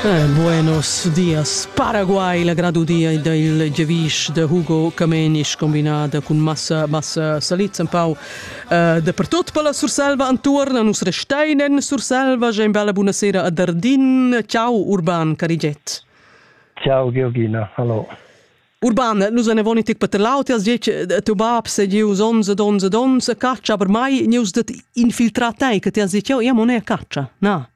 Eh, buenos dias. Paraguay, la gradudia del Gevish de Hugo Kamenisch combinada cun massa massa saliz un pau uh, de pertot per la Surselva antuorna nus restein en Surselva, ge bella buonasera a Dardin. Ciao Urban Cariget. Ciao Georgina, hallo. Urban, nus ne voni tic per laut as dic teu bab se gieus 11 11 11 caccia per mai neus det infiltrar tai che ti has dit io io non è caccia. Na.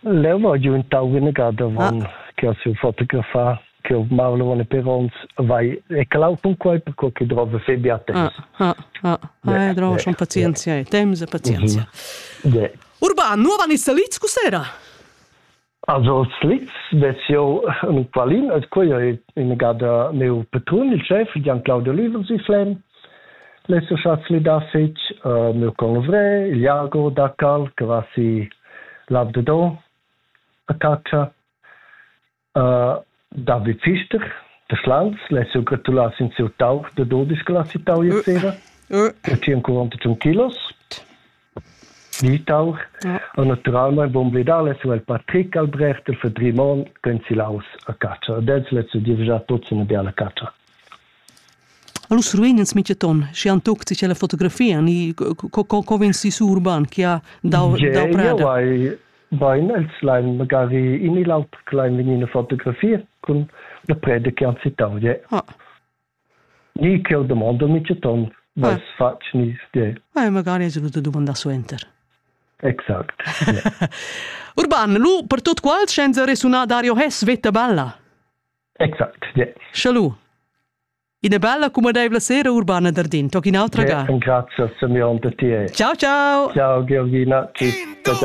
Leu va giu in tau inegada avon che ha siu fotografar che Marlon e Peronz vai e clau cun quei per co che drova fe bia temps. Ah, ah, ah, drova schon pazienzia e temps e pazienzia. Urban, nu van in Saliz cusera? Also Slitz vezio un qualin as quia in gada meu patrun il chef Gian Claudio Löwen si flem L'ais uschè flidà fich mieu convrer, Jago Dacal, che va sü l'Alp de Don a chatscha. David Pfister da Schlans, l'ais eu gratulà sün sieu tauch da dodisch che l'ha citau ier sera. El tia ancura ünta tschun kilos. Smitauch ha naturalmein bumbledau lessel Patrick Albrecht el Fedrimon pensilaus a catscha ed els lezza gievgia tuts ina biala catscha. Alus ruin ins mintgaton, schi han tuckt si la fotografia, ni co co co vegn si su urban che ha dau dau prada. Gie, bain, els lein magari in il aut klein vegnir fotografie cun la preda che han citau. Ja. Ni ch'jeu domondel mintgaton, Veis fatg nies di? Eh, magari es venuta dumandar suenter. Exact. Ja. Urban, lu per tot quals scienza resuna Dario Hess veta bella? Exact, ja. Sche lu. Ina bella cumadeivla sera, Urbana Dardin, toc in autra ga. Ja, grazie, Simeon, per ti. Ciao, ciao. Ciao, Georgina. Tschüss. Ciao, ciao.